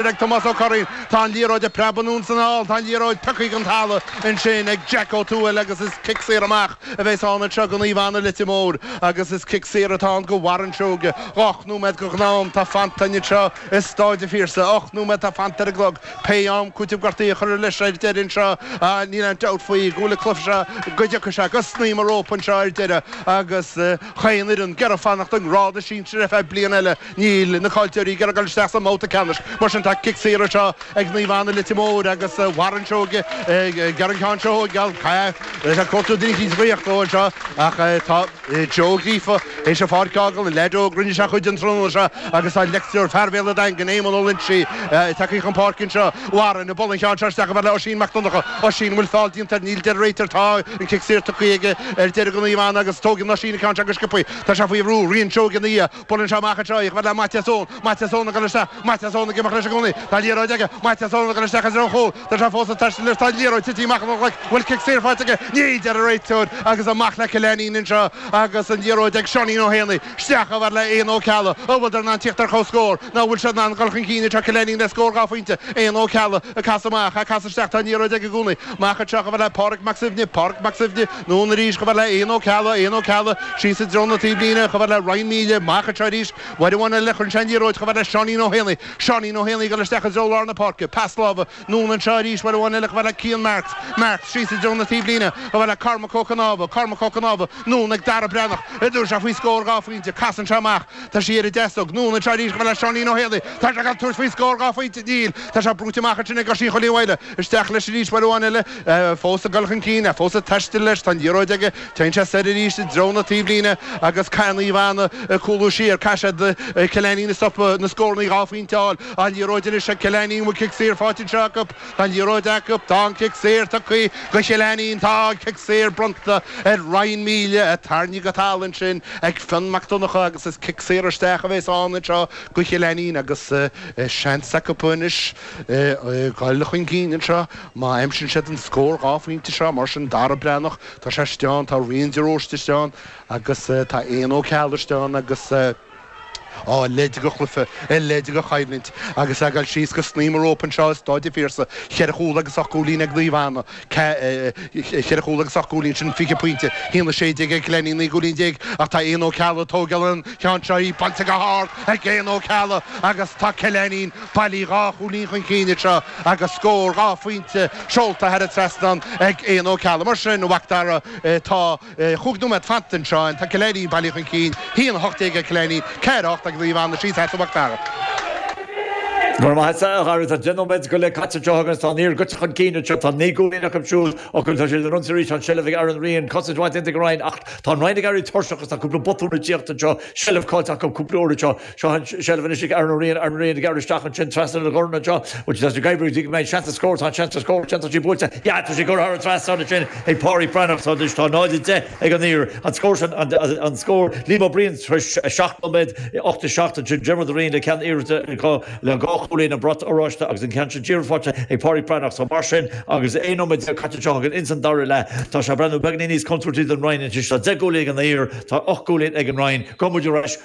ag Tomás Ó Curraoin. Tá an liathróid ag preabadh anonn 's anall, tá an liathróid tógtha den talamh ansin ag Jack Ó Tuathail agus is cic saor amach a bheas ann anseo go Naomh Anna Leitir Móir agus is cic saor atá ann go Warren Seoige. Ocht nóiméad de ghnáth-am atá fanta againn anseo i Stáid a' Phiarsaigh. Ocht nóiméad atá fanta ar an gclog. Pé am cúitimh gortaithe a chuirfear leis ar deireadh anseo níl aon dabht faoi go bhfuil an cluiche seo go dtiocfaidh sé go snaidhm an rópa anseo ar deireadh agus chaon fhoireann ag iarraidh fanacht i ngrád na sinsear ar feadh bliain eile. Níl na caillteoirí ag iarraidh dul isteach sa mbabhta ceannais, mar sin tá cic saor anseo ag Naomh Anna Leitir Móir agus Warren Seoige ag iarraidh an ceann seo a thógáil. Tá sé ag cuartú daoine ag tíocht leo anseo ach tá Joe Gríofa théis an pháirc a fhágáil, an leaid óg rinne sé a chuid an tráthnóna seo agus tá leictreoir fear Bhéal an Daingin, Éamonn Ó Loinsigh tagtha chun páirce anseo. Warren ag bualadh an cheann seo isteach chomh fada le Oisín Mac Donnacha. Oisín, an bhfuil foul déanta air? Níl a deir an réiteoir. Tá an cic saor tugtha aige ar deireadh go Naomh Anna agus tógann Oisín an ceann seo go sciobthaí. Tá sé faoi bhrú, Riain Seoige ina dhiaidh. Buaileann sé amach anseo, chomh fada le Maitias Eoin. Maitias Eoin ag dul isteach. Maitias Eoin ag imeacht leis i gcónaí. Tá an liathróid aige. Maitias Eoin ag dul isteach i dtreo an chúil. Tá sé fós ag taisteal leis. Tá an liathróid titithe amach óna ghlaic. An bhfuil cic saor faighte aige? Níl a deir an réiteoir agus amach le Cill Ainnín anseo agus an liathróid ag Seáinín Ó hÉanaigh. Isteach chomh fada le Éanna Ó Ceallaigh. An bhfuileadar in ann tíocht ar comhscór? Nó an bhfuil siad in ann dul chun cinn anseo Cill Ainnín le scór dhá phointe? Éanna Ó Ceallaigh ag casadh amach, ag casadh isteach. Tá an liathróid aige i gcónaí. Amach anseo chomh fada le Pádraig Mac Suibhne. Pádraig Mac Suibhne. Anonn arís, chomh fada le Éanna Ó Ceallaigh, Éanna Ó Ceallaigh, síos i dtreo na taobhlíne, chomh fada le Ryan Melia, amach anseo arís, uair amháin eile a chuireann sé an liathróid, chomh fada le Seáinín Ó hÉanaí, Seáinín Ó hÉanaí, ag dul isteach i dtreo lár na páirce, pas láimhe, anonn anseo arís, uair amháin eile, chomh fada le Cian Marks, Marks, síos i dtreo na taobhlíne, chomh fada le Cormac Ó Canábha, Cormac Ó Canábha, anonn ag Dara Breathnach, an dtabharfaidh sé faoi scór dhá phointe, casann sé amach, tá sé ar a dheasóg, anonn anseo arís, chomh fada le Seáinín Ó hÉanaí, tá sé ag dul ag tabhairt faoi scór dhá phointe, níl, tá sé brúite amach ansin ag Oisín Chóilí Mháille, Isteach leis arís uair amháin eile, é fós ag dul chun cinn, é fós ag taisteal leis, tá an liathróid aige, téann sé soir arís i dtreo na taobhlíne agus caithfidh Naomh Anna cúlú siar, caithfidh siad Cill Ainnín a stopadh, na scórannaí dhá phointe a fháil. An liathróid anois ag Cill Ainnín, an bhfuil cic saor faighte anseo acu? Tá an liathróid acu, tá an cic saor tugtha go Cill Ainnín, tá an cic saor bronnta ar Ryan Melia, a tarraingíodh go talamh ansin ag Fionn Mac Donnacha agus is cic saor isteach a bheas ann anseo go Cill Ainnín agus seans acu anois, a dhul chun cinn anseo. Má aimsíonn siad an scór dhá phointe seo, mar sin, Dara Breathnach, tá sé istigh ann, tá Rian de Róiste istigh ann agus tá Éanna Ó Ceallaigh istigh ann agus, a leithéide de chluiche, a leithéide de choimhlint agus a' dul síos go snaidhm an rópa anseo i Stáid a' Phiarsaigh, cheithre chúl agus ocht gcúilín ag Naomh Anna, Cheithre chúl agus ocht gcúilín, sin fiche pointe. A haon a sé déag ag Cill Ainnín, naoi gcúilín déag ach tá Éanna Ó Ceallaigh, ag tóigeáil an cheann seo, í buailte go hard ag Éanna Ó Ceallaigh agus tá Cill Ainnín bailithe dhá chúilín chun cinn anseo agus scór dhá phointe seolta thar an trasnán ag Éanna Ó Ceallaigh. Mar sin, a Mhacdara, tá. Cúig nóiméad fanta anseo, tá Cill Ainnín bailithe chun cinn, 1, 18 ag Cill Ainnín, 4, 8 ag Naomh Anna síos theas ó Mhac Dara. Go raibh maith agat a Dhara, tá 10 nóiméad go leith caite anseo againn agus tá an Uidhir gaibhte chun cinn anseo. Tá 9 gcúilín acu siúd ach tá siad ag ionsaí arís, tá an seilbh ag Aaron Ryan, cosaint iontach ag an Rinn ach tá an Rinn ag éirí tuirseach agus tá cúpla botún ag teacht anseo, seilbh caillte acu cúpla uair anseo. Seo an seilbh anois ag Aaron Ó Riain, Aaron Ó Riain, ag gearradh isteach ansin trasna na gcomhrainn anseo. Bhuel, tá sé gaibhrithe go dtí go mbeidh an seans a scór, tá an seans a scór, tá sí buailte, ya, tá sí curtha thar an trasnán ansin ag Páraic Breathnach, so anois tá 0, 10 ag an Uidhir, an scór sin, an scór, Liam Ó Briain tar éis seacht nóiméad, 8, 7 ansin, Diarmuid Ó Riain le ceann iarrachta acu le dhá chúilín, an brat oráiste agus an ceann sin díreach faighte ag Páraic Breathnach, so mar sin agus 11 nóiméad caite anseo againn ins an dara leath, tá sé ag breathnú beagainín níos contúirtí don Rinn anois, tá deich gcúilín ag an Uidhir, tá ocht gcúilín ag an Rinn, gabhfaidh muid ar ais.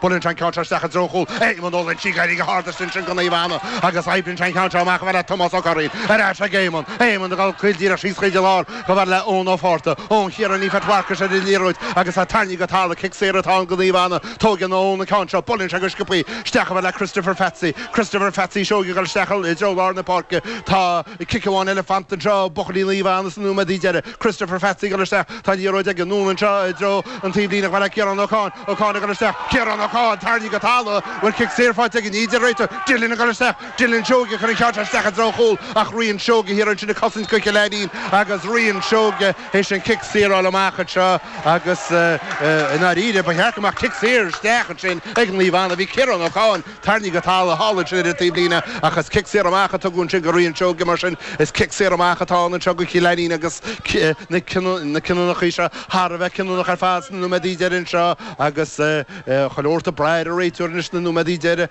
Buaileann sé an ceann seo isteach i dtreo chúl Éamonn Ó Loingsigh, ag éirí go hard istigh ansin go Naomh Anna, agus oibríonn sé an ceann seo amach a bhfad le Tomás Ó Curraoin, ar ais ag Éamonn, Éamonn ag dul díreach síos go lár, go bhfad le Eoin Ó Fátharta, Eoin Chiaráin Ní Phetrarcais ar an liathróid agus tá tarraingthe go talamh, cic saor atá ann go Naomh Anna, tóigeann Eoin an ceann seo, buaileann sé go sciobtha isteach a bhfad le Christopher Pheatsaí, Christopher Pheatsaí Seoighe, ag dul isteach i dtreo lár na páirce, tá. Cic amháin eile fanta anseo, buachaillí Naomh Anna sna nóiméadaí deiridh. Christopher Pheatsaí ag dul isteach. Tá an liathróid aige. Anonn anseo i dtreo an taobhlíne. A bhfad le Ciarán Ó Con. Ó Con ag dul isteach. Ciarán Ó Con! Tarraingthe go talamh! Bhuel, cic saor faighte aige, ní hea a deir an réiteoir. Dillon ag dul isteach. Dillon Seoighe ag cur an ceann seo isteach i dtreo chúl ach Rian Seoighe thiar ansin ag cosaint go Cill Ainnín agus Rian Seoighe théis an cic saor a fháil amach anseo agus, i ndáiríre, ba cheart go mbeadh cic saor isteach ansin ag Naomh Anna. Bhí Ciarán Ó Con. Tarraingthe go talamh thall ansin ar an taobhlíne, ach is cic saor amach a tugadh ansin go Rian Seoighe, mar sin, is cic saor amach atá ann anseo go Cill Ainnín agus na cinniúnachaí seo thar a bheith cinniúnach ar fad sna nóiméadaí deiridh anseo agus chuile shórt ag brath ar an réiteoir anois sna nóiméadaí deiridh.